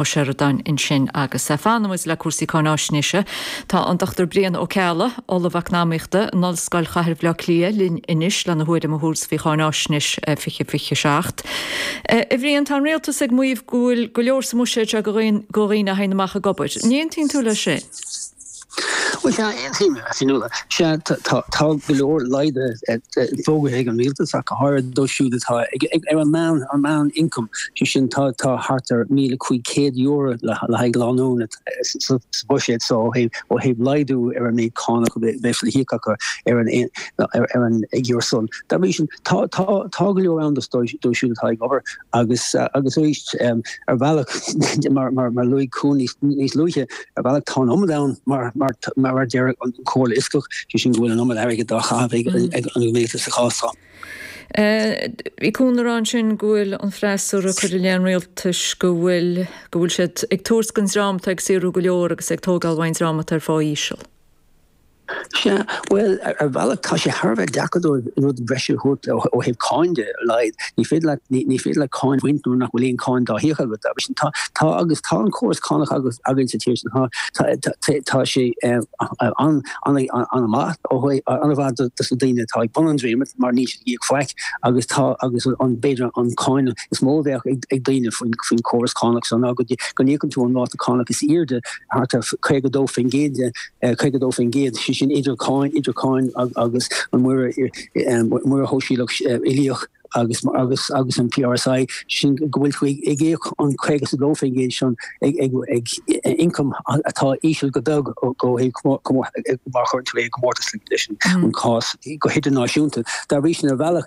Ó Seireadáin ansin agus fanfaidh muid le cúrsaí cáináisnéise. Tá an Dr Brian Ó Ceallaigh, Ollamh Eacnamaíochta in Ollscoil Chathair Bhaile Átha Cliath, linn anois lena thuairim a thabhairt faoi Cháináisnéis 2027. A Bhrian, tá an Rialtas ag maíomh go bhfuil go leor sa mbuiséad seo do dhaoine a théann amach ag obair. An aontaíonn tú leis sin? Bhuel, sea, níl, sea, tá go leor laghdaithe fógartha ag an Rialtas ach go háirid dóibh siúd atá ar an meán-ioncam, sé sin tá thart ar €1,500 le haghaidh lánúna sa bhuiséad so ó thaobh laghdú ar an méid cánach a bheas le híoc acu ar a gcuid ioncaim san. Dá bhrí sin, tá go leor ann dóibh siúd atá ag obair. Agus, agus arís, ar bhealach, mar luaigh Cuan níos luaithe, ar bhealach tá an iomad ann mar mar a deir an Comhairle Fhioscach, sé sin go bhfuil an iomad airgid dá chaitheamh ag an Rialtas sa chás seo. Bhí Cuan ag rá ansin go bhfuil an freasúra ag cur i leith an Rialtais go bhfuil go bhfuil siad ag tabhairt don dream atá ag saothrú go leor agus ag tógáil ón dream atá ar phá íseal. Sea, bhuel, ar bhealach tá sé thar a bheith deacair dóibh rud breise a thabhairt ó thaobh cáin de, ar a laghad. Ní féidir leat, ní féidir leat cáin a bhaint nuair nach bhfuil aon cháin dá híoc agat. Dá bhrí sin, tá, tá agus tá an córas cánach agus, againn sa tír seo, tá, tá, tá, tá sé eh, an, an, an-mhaith ó thaobh, an-mhaith do, dos na daoine atá ag bun an dréimire mar níl siad ag íoc faic agus tá, agus an, b'fhéidir an cáin is mó a bheadh ag, ag daoine faoin, faoin córas cánach so ná go, go n-íocann tú an ráta cánach is airde, thart ar 52%, 52%, sé sin idir cáin, idir cáin agus an Muirear, Muirear Sóisialach Uilíoch agus agus agus an PRSI, sin go bhfuil tú ag íoc an 52% sin ag ioncam atá íseal go beag go má chuireann tú é i gcomórtas leis an cás go hidirnáisiúnta. Dá bhrí sin ar bhealach,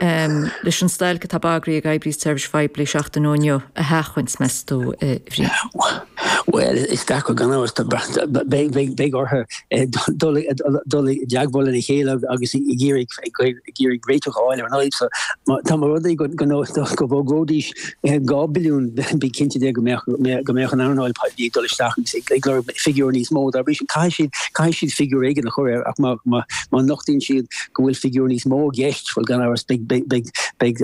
leis an stailc atá bagartha ag oibrithe seirbhíse poiblí seachtain ó inniu a sheachaint, meas tú, a Bhriain? Bhuel, is deacair gan amhras, beidh orthu dul i dteagmháil lena chéile agus ag iarraidh réiteach a fháil ar an fhadhb seo. Dá mba rud é go bhfógróidís 2 billiún, bí cinnte de go mbeadh an earnáil poiblí ag dul isteach agus ag lorg figiúr níos mó. Dá bhrí sin caithfidh siad figiúr éigin a chur air ach má nochtaíonn siad go bhfuil figiúr níos mó i gceist, bhuel gan amhras beidh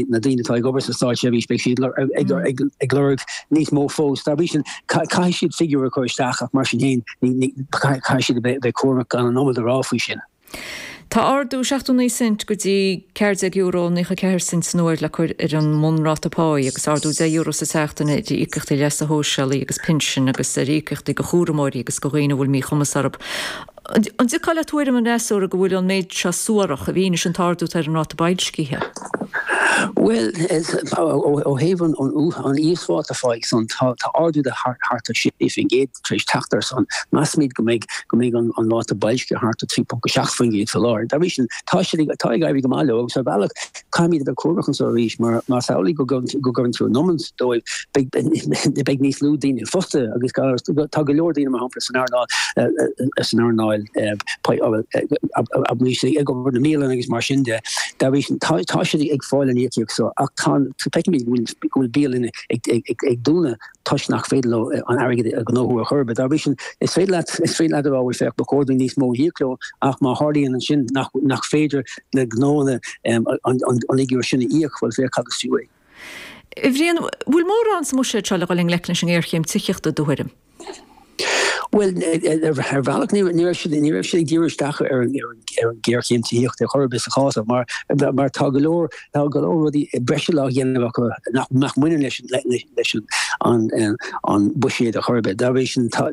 na daoine atá ag obair sa stáitseirbhís beidh siad ag lorg níos mó fós. Dá bhrí sin caithfidh siad figiúr a chur isteach ach mar sin féin caithfidh siad a bheith cúramach gan an iomad a rá faoi sin. Tá ardú 79 cent go dtí €14 nócha ceathair cent san uair le cur ar an mbunráta páí agus ardú €10 sa tseachtain ar íocaíochtaí leasa shóisialaigh agus pinsin agus ar íocaíochtaí do chúramóirí agus do dhaoine a bhfuil míchumas orthu. An dtiocfá le tuairim an fhreasúra go bhfuil an méid seo suarach i bhfianaise an t-ardú atá ar an ráta boilscithe? Bhuel, ó thaobh an íosphá atá ráite ansan, tá ardú de thart ar 6% tar éis teacht air san. Measaimid go mbeidh go mbeidh an an ráta boilsce thart ar 3.7% fé láthair. Dá bhrí sin, tá siad ag tá ag éirí go maith leo agus ar bhealach, caithfimid a bheith cúramach anseo arís mar más amhlaidh go gcuireann go gcuireann tú an iomarca dóibh, beidh beidh níos lú daoine fostaithe agus gan amhras tá go leor daoine mar shampla san earnáil san earnáil poiblí ag obair ins na bialanna agus mar sin de. Dá bhrí sin, tá siad ag fáil an íocaíocht seo ach feicimid go bhfuil bialanna ag dúnadh toisc nach féidir leo an airgead a ghnóthú ar chor ar bith. Dá bhrí sin, is féidir leat a rá, bhuel féach, ba chóir dúinn níos mó a íoc leo ach má tharlaíonn ansin nach féidir le gnóanna an figiúr sin a íoc, bhuel féach cad is fiú é. A Bhriain, bhfuil mórán sa mbuiséad seo le dhul i ngleic leis an ngéarchéim tithíochta, i do thuairim? Bhuel, ar bhealach ní raibh siad ní raibh siad ag díriú isteach ar an ar an géarchéim tithíochta ar chor ar bith sa chás mar mar tá go leor tá go leor rudaí breise á dhéanamh acu nach nach mbaineann leis leis an an buiséad a chor ar bith. Dá bhrí sin sa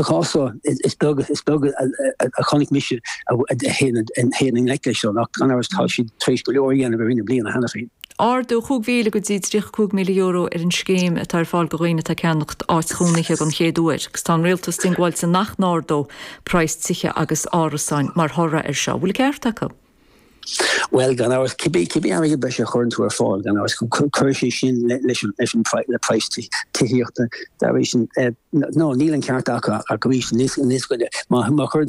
chás is beag is beag a chonaic mise a théann a théann i ngleic leis seo ach gan amhras tá siad tar éis go leor a dhéanamh ar i mbliana cheana féin. Ardú chúig mhíle go dtí tríocha cúig míle euro ar an scéim atá ar fáil go dhaoine atá ag ceannacht áit chónaithe don chéad uair agus tá an Rialtas diongbháilte nach n-ardóidh praghas tithe agus árasáin mar thoradh air seo. Bhfuil ceart acu? Bhuel, gan amhras, cibé airgead breise a chuireann tú ar fáil, gan amhras, cuirfidh sé sin le praghas tithíochta. Dar ndóigh, níl an ceart acu ach arís, má chuireann tú